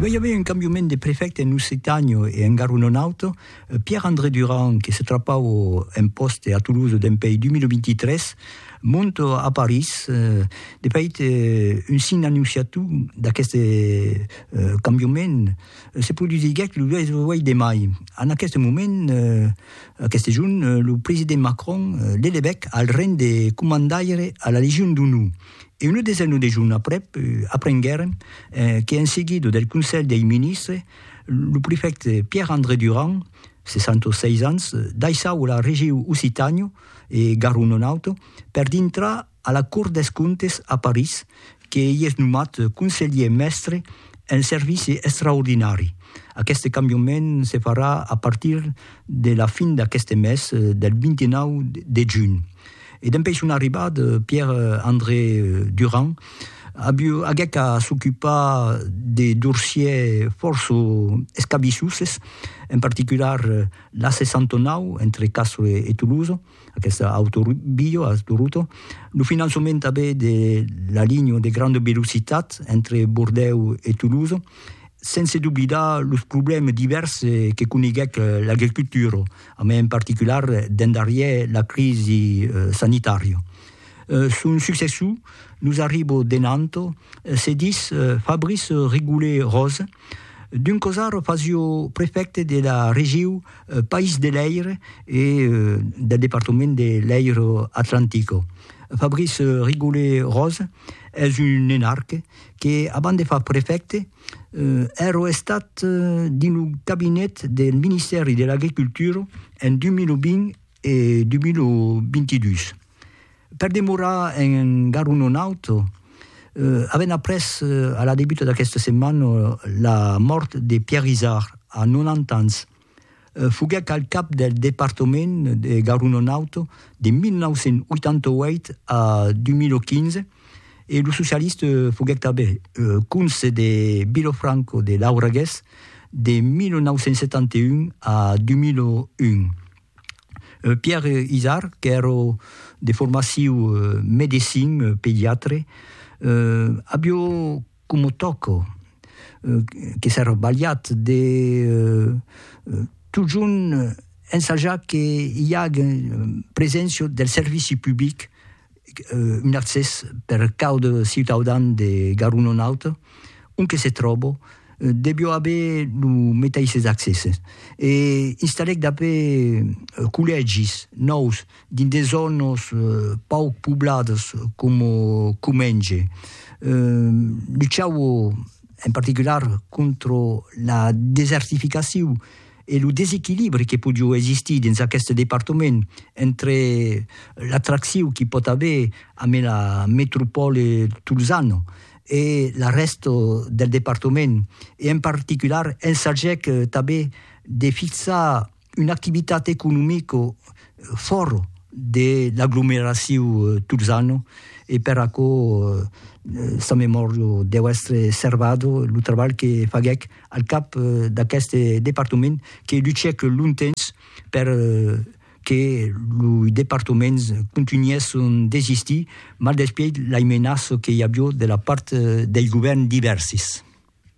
Vai i aver un cambiament de prefècte en Occitània e en gar un autre, Pierre André Durand, que se trapava un pòste a Toulouse dempuèi 2023, monta a París, de fait un signe annonciator d'aqueste cambiament se produsiguèt lo 8 de mai, en aqueste moment, aqueste jorn, lo president Macron l'elevèc al ranh de comandaire a la Legion d'Onor. e una desena de jorns aprèp aprenguèrem que en seguida del Conselh dei Ministres lo prefècte Pierre André Durand, 66 ans, daissava la regiu Occitània e Garona Nòrd per dintrar a la Cort des Comptes a París que i es nomat conselhier mèstre en servici extraordinari. Aqueste cambiament se farà a partir de la fin d'aqueste mes, del 29 de junh. E dempè son arribat Pierre André Durand, aguec a s'ocupar de dorsiers fòrça escabissuses, en particular l'a 69 entre Castro e Toulouse, aquesta autovia a Toronto, lo finançament tanben de la linha de granda velocitat entre Bordèu e Toulouse, sense doblidar los problèmes divèrses que coneguèc l'agricultura. e en particular dens darrièr la crisi sanitària. Son successor nos arribo de Nanto, se ditz Fabrice Rigoulet-Rose, d'un cosar fasio prefècte de la regiu País de Lèir e del departament de Lèiro Atlantico. Fabrice Rigoulet-Rose es un enarque que, abans de far prefècte, Ero estat dins lo cabinet del Ministèri de l'Agricultura en 2020 e 2022. Per demorar en Garu non auto, avèm après a la debuta d'aquesta setmana la mòrt de Pierre Izard a 90 ans. Foguèc al cap del departament de Garonne-Nord de 1988 a 2015 e lo socialista foguèc tanben conse de Vilofranco de Lauragués de 1971 a 2001. Pierre Izard, qu'èra de formaciu medecin pediatre, avió Como tòco, que s'è robalhat de totjorn ensajar que i age preséncia del servici public, un accès per caude ciutaudan de Garononauta, ont que se tròbo, devió aver lo meteisses accèsses. E installèc dapé collègis nòus dins de zònas pauc pobladas coma Comenge. Luchau en particular contra la desertificacion e lo desequilibri que podiá existir dins aqueste departament entre l'atraccion qu'i pòt aver ambe la metropòla tolzana e la rèsta del departament e en particular ensagèc tanben de fixar una activitat economico fòr de l'aglomeraciu tolzano e per aquò sa memòria deu èstre servada lo trabalh que faguèc al cap d'aqueste departament que luchèc longtemps per que loi departaments contunhèss son d'existir maldespièit lai menaça que i avió de la part dei govèrns divèrsis.